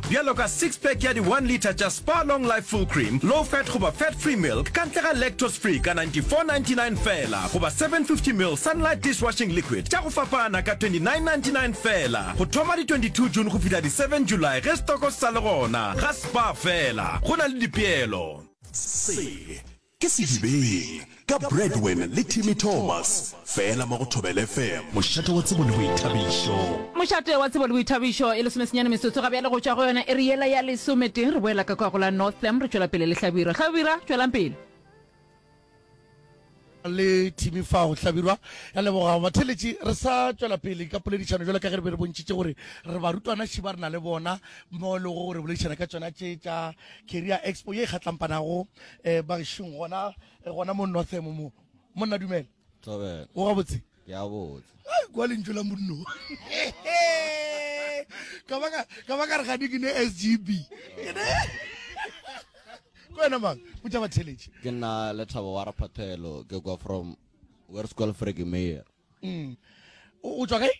bjalo ka six pack ya di one litre tša Spar Long Life Full Cream, Low Fat goba Fat Free Milk ka ntle ga Lactose Free ka 94.99 feela goba 750 ml Sunlight Dishwashing Liquid tša go fapana ka 29.99 feela go thoma di 22 June go fihla di 7 July ge stoko se sa le gona. Ga Spar feela, go na le dipeelo. Se Ke Sedibeng ka Bradwin le Timmy Thomas fela mo go Thobela FM. Mošate wa tsebo le boithabišo. Mošate wa tsebo le boithabišo e lesomesenyane metsotso ga bjale go tšwa go yona iri yela ya lesometee. Re boela ka kwa go la Northam, re tšwela pele le Hlabirwa. Hlabirwa, tšwelang pele. Le Timmy fao. Hlabirwa, re a leboga. Batheeletši, re sa tšwela pele ka poledišano bjalo ka ge re be re bontšhitše gore re barutwana še ba re na le bona mo e lego gore re boledišana ka tšona tše tša Career Expo ye e kgatlampanago eh bagešong gona eh, gona mo northemo mo monna dumela Thobela. o gabotse Ke a botse. Ai, kwa lentšu la monno ka ba ka- ka ba ka re gane ke ne sgb Ke ne- ko wena mang botša batheletše Ke nna Lethabo wa Raphathelo. Ke kwa from Werskol Fregemeyer. Mm. O tswa kae?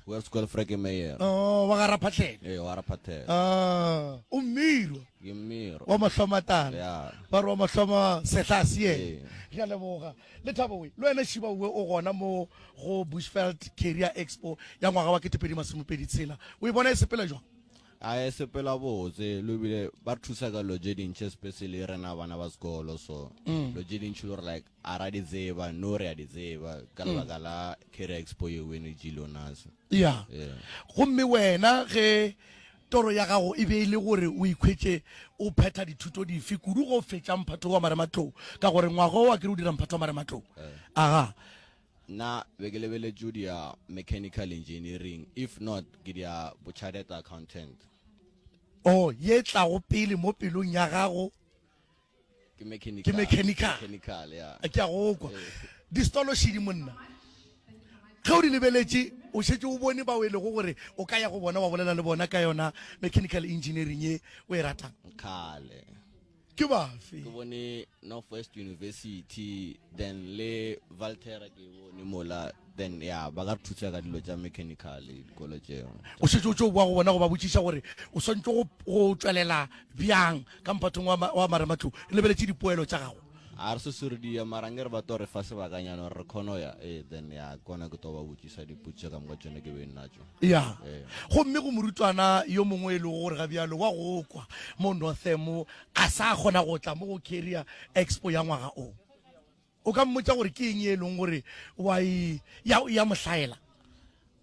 Wa sekolo Freke Meyer. Oh, wa gara phatlhela. Ee, wa gara phatlhela. Ah, o mmirwa. Ke mmirwa. Wa mahloma tala. Yeah. Ba re wa mahloma setlase ye. Ee. Re a leboga. Le thabo we. Le wena Shiba we o gona mo go Bushveld Career Expo ya ngwaga wa 2026. O e bona e sepela jwang? a e sepela botse lo bile ba re thusa ka lo je dintšhe especially rena bana ba sekolo so lo je dintšhe lo re like A ra di tseba, no re a di tseba ka lebaka la Career Expo yeo e ne tšilo nasa. Ya. Yeah. Gomme wena ge toro ya gago e be e le gore o ikhwetše o phetha dithuto dife kudu ge o fetša mphato wa marematlou, ka gore ngwaga o a ke re o dira mphato wa marematlou. Yeah. Aga. Nna be ke lebeletše di ya mechanical engineering, if not ke di ya bo chartered accountant. Oh, ye tlago pele mo pelong ya gago? ke mechanical ke a go kwa di stolo shidi monna ge o di lebeletše o šetse o bone bao e lego gore o ka ya go bona wa bolela le bona ka yona mechanical engineering e o e ratang kgale ke bafe ke bone northwest university then le valtera ke bone mola Then, ya, ba ka re thusa ka dilo tša mechanical dikolo tšeo. O šetše o tšo boa go bona go ba botšiša gore o swantšwe go, go tšwelela bjang ka mphathong wa, wa marematlou, re lebeletše dipoelo tša gago. A re se sure di ya, mara nke re ba tlo re fa sebakanyana gore re kgone go ya, ee, then, ya, ke gona ke tlo ba botšiša dipotšišo ka moka tšone ke beng natšo. Ya. Ee. Gomme go morutwana yo mongwe e lego gore gabjalo wa go kwa mo Northern mo, a sa kgona go tla mo go Career Expo ya ngwaga o. O ka mmotša gore ke eng ye e leng gore wa e, ya, ya mo hlaela.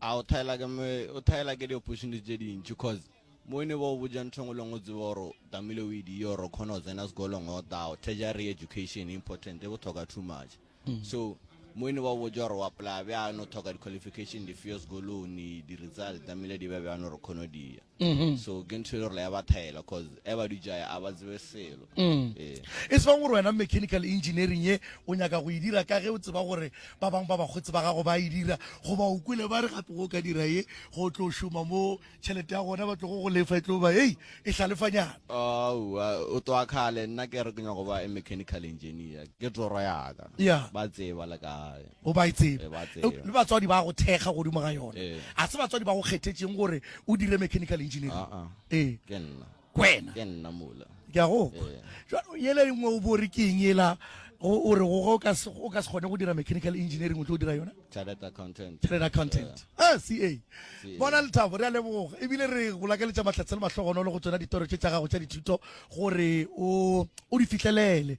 A o thaela ke me, o thaela ke di-opportunity tše dintši cause mo ne ba o botša ntho engwe le ngwe o tsebe gore o tamile o ediye gore o kgone go tsena sekolong o tao tertiary education important e botlhoka too much mm. so mo ne ba o botša gore o apply bjano o tlhoka di-qualification difeo sekolong di-result tamile di be bjano gore kgone o diya mm-hmm. so ke ntho e le gore ya ba thaela cause e ba dujaya a ba tsebe selo mm. ee. e se bang gore wena mechanical engineering ye o nyaka go e dira ka ge o tseba gore ba bangwe ba bakgotsi ba gago ba e dira goba o kwele ba re gape go ka dira ye go tlo šoma mo tšhelete ya gona ba tlogo go lefa e tlo ba ei e hlalefanyana aowa o toa kgale nna ke re ke nyaka go ba e mechanical engineer ke toro yaka ba tseba le kae O ba e tseba. Le batswadi ba go thekga godimo ga yona. A se batswadi ba go kgethetšeng gore o dire mechanical engineering. Ee. Ke nna. Kwena. Ke nna mola. Ke a go. Jalo yele engwe o bore ke eng yela o re go o ka se o ka se gone go dira mechanical engineering o tlo dira yona chartered accountant chartered accountant ah ca bona lethabo re a leboga ebile re go lakeletša mahlatse le mahlogonolo go tsona ditoro tše tša gago tša dithuto gore o o di fihlelele